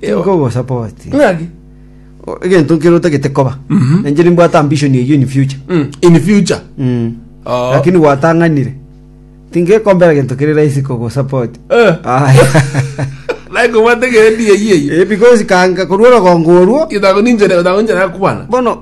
Tinkogosopa oti. Ng'aki? Egento nkere otagete koba. Mhm. Nanje nimbwate ambition eyio in future. Mm, in future Mm. Oh. Lakini gwatang'anire. Tingekombera gento kere rahisi kogosopa oti. Eh. Aya. naye kobwate gendi eyieyi Eh, because kanga korwa orogongo orwo, Itago ninjere itago ninjere akwana. bono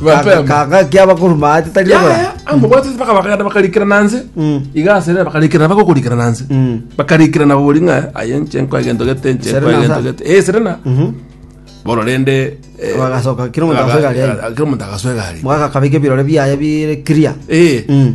Mapema. Kaga kia bakuru maati tari Yaya, obora. amobwate mpaka bakagenda bakarikirana nse Mm. iga asere bakarikirana bagokurikirana nse Mm. bakarikirana bori ng'a aye nche nkoegento gete nche Serena nkoegento sa? gete eh serena Mhm. bono rende eh, Bagasoka, kira omonto aga- agasweka aria. aga- kira omonto agasweka aria. Mwaka kabika ebirore biaye bire clear. Eh. Mm.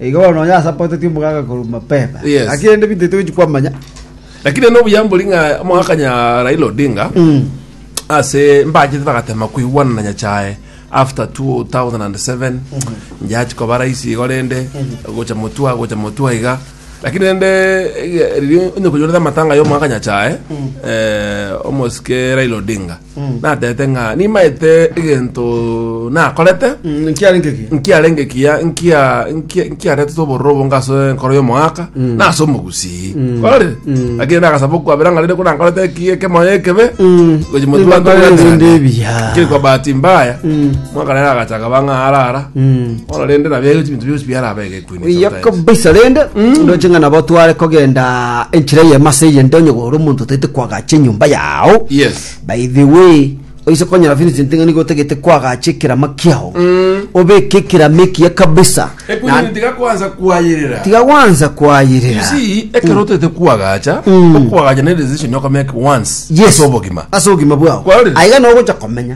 Na igo bono onye asapoteti omogaka korwa mapema. Yes. Naki rende binto ebi togochi kwamanya. lakini ene obuya mbori ng'a omogaka nya raila odinga ase mbachete bagatema koigwana na nyachae after 2007 njachi koba rais igo rende gocha motua gocha motua iga lakini rende eh, riria onye konyorete amatanga ya omogaka nyachae eh, omosike raila odinga natete ng'a nimaete egento nakorete Mm, nkiarenge ki nkiarenge kiya nkia nkia- nkiaretete obororo obo ngase enkoro y'omogaka nase omogusii kore lakini nagasaba okwabera ng'a rende ko nankorete eki- ekemoyo ekebe gochi motu banto Nibakorera bwate ebinto gane. ebiya. Kiri kwa bahati mbaya mwaka rero agachaka bang'a arara Mm. bono rende nabia gochi binto bionsi biarabegete Buya kabisa rende ndoche ng'a nabo tware kogenda enchera eye mase eye nde onye gore omonto otaete kwagacha enyomba yao Yes. by the way oise konyora Vincent ng'a nigo otagete kwagacha ekerama kiao obeke ekerama ekiya kabisa Ekunyi Na- tiga kwanza kwayerera. tiga gwanza You kwayerera see, ekero otete kwagacha, okwagacha ne decision okomeka once. Yes. Ase obogima. ase obogima bwao Kwarorire? aiga nogocha komenya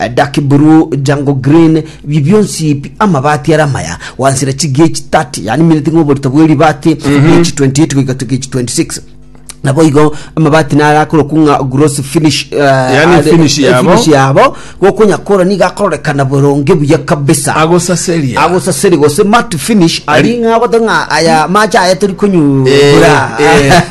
Eh, Dark blue, jungle green, bi bionsi pi amabati are amaya wansira chigechi 30 yani mineti ng'a oborito bwe ribati gechi 28 goika to gechi 26 nabo igo amabati nare akorokwa ng'a gross finish eh, Yani are- finish eh, yabo. finish yabo gokonya kora niga akororekana boronge buya kabisa agosaseria agosaseri gose mat finish ari ng'a gothe ng'a aya mache aya tori konyura Eh, eh.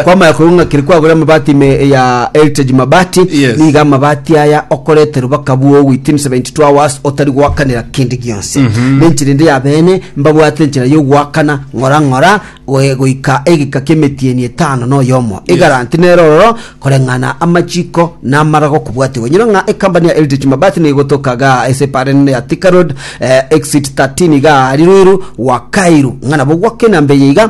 Kwamanya korwa ng'a kere kwagora amabati ime ya Heritage Mabati Yes. niga amabati aya okorete rubaka bwogo within 72 hours otari goakanera kende gionse nenchera ende ya bene mbabwate enchera yogoakana ng'ora ng'ora goe- goika egeka ki'emetieni etano na oyomo egaranti nero ororo koreng'ana amachiko na amarago kobwatiwa nyiro ng'a ekambani ya Heritage Mabati nigo egotokaga ase epara enene ya Thika Road eh, exit 13 iga ari Ruiru Wakairu ng'a nabo gwake enamba eye iga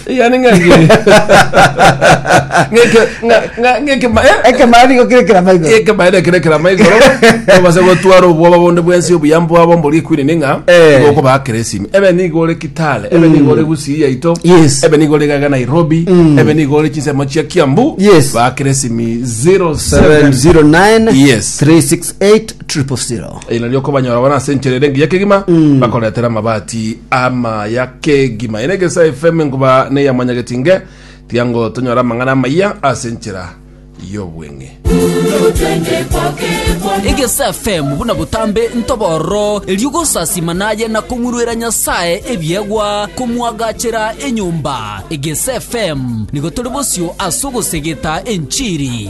yani ng'ange ng'eke ng'a- ng'a- ng'eke ma- eh, ekemaa nigo kirekera maigo eke maere kerekera maigoro obase gotwara obwoba bonde bwensi obuya mbwabo mbori ekwini ning'a Eh. igo okobaa keresimi ebe nigo ore kitale ebe nigo ore gusii yaito Yes. ebe nigo ore gaga nairobi ebe nigo ore chinsemo chia kiambu Yes. ba keresimi 07 709 Yes. 36 8000. Eri nario okobanyora bono ase enchera ere engiya kegima bakoretera amabati amaya kegima ere egesa fm nkoba neya mwanyageti nge tiango tonyore amang'ana amaya ase enchera y'obweng'e egesa fm buna botambe ntobororo erio gosasima naye na kong'uruera nyasaye ebiegwa komwagachera enyomba egesa fm nigo tore bosio ase ogosegeta enchiri